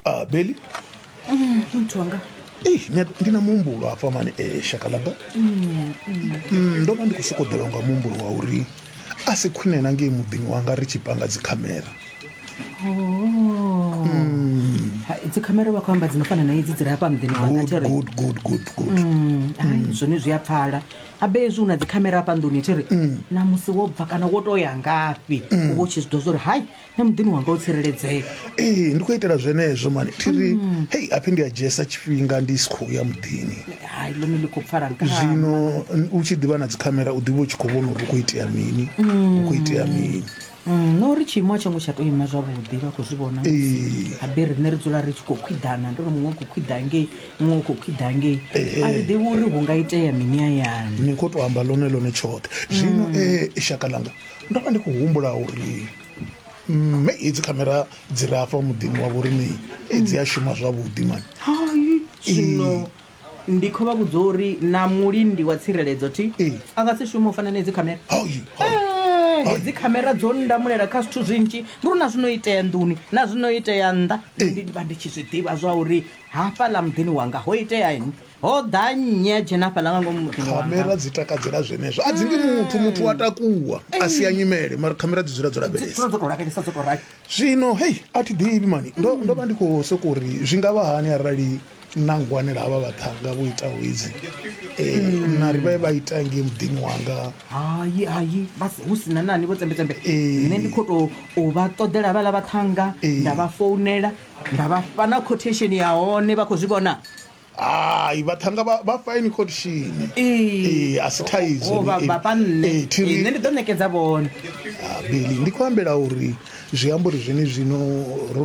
ah, beli nthonga Ei, nya- ndi na muhumbulo hafha mani eh, shaka langa Mm, ndo vha ndi khou sokoḓelwa nga muhumbulo wa uri a si khwine na ngei muḓini wanga ri tshi panga dzikhamera dzikhamera vha khou amba dzi no fana na idzi dzi re hafha muḓini wanga good tere good good good good ai zwone zwi a pfala abe hezwi u na dzikhamera hafha nḓuni tere na musi wo bva kana wo to ya ngafhi u vha u tshi zwi ḓo zwa uri hai na muḓini wanga u tsireledzea ee ndi khou itela zwenezwo mani thiri mm. hei aphi ndi a dzhiesa tshifhinga ndi si khou ya muḓini hai ḽone ḽi khou pfala nka zwino u tshi ḓivha na dzikhamera u ḓivha u tshi khou vhona uri u khou itea mini u khou itea mm. mini mm, na uri tshiimo a tsho ngo tsha tou ima zwavhuḓi vha khou zwi vhona habe riṋe ri dzula ri tshi khou khwiḓana ndi uri muṅwe u khou khwiḓa ngei muṅwe u khou khwiḓa ngei a ri ḓivhi uri hu nga itea mini ayani ni khou tou amba ḽone ḽone tshoṱhe zwino e shaka ḽanga ndo vha ndi khou humbula uri mme hedzi khamera dzi re afha muḓini wa vhoriṋei dzi a shuma zwavhuḓi mani zwino ndi kho vha vhudza uri na mulindi wa tsireledzo ti a nga si shume u fana na hedzi khamera hedzi khamera dzo ndamulela kha zwithu zwinzhi ndi uri na zwino itea nḓuni na zwino itea nnḓa ndi vha ndi tshi zwi ḓivha zwa uri hafhaḽa muḓini wanga ho itea ini Ho ḓa nnyi a dzhena hafhaḽa nga ngomu muḓini wanga? Khamera dzi takadzela zwenezwo. A dzi ndi muthu, muthu wa takuwa a sia nyimele, mara khamera dzi dzula dzo Dzi dzula lavhelesa. dzo tou lavhelesa dzo tou rali. Zwino hei, a thi ḓivhi mani, ndo ndo vha ndi khou sokou ri zwi nga vha hani arali na ngwanela havha vhaṱhannga vho itaho hedzi eh, na ri vha vha ita ngei muḓini wanga. Hai, hai, vha si- hu si na nani vho tsembe-tsembe. Ee. Nṋe ndi khou tou u vha ṱoḓela havhaḽa vhaṱhannga, Ee. nda vha founela, nda vha fha na quotation ya hone vha khou zwi vhona. Hai vhaṱhannga vha vha fine khotshini. Ee a si thaidzo ni vha vha nne nne ndi ḓo ṋekedza vhone. Beli ndi khou ambela uri zwi amba uri zwenezwino ro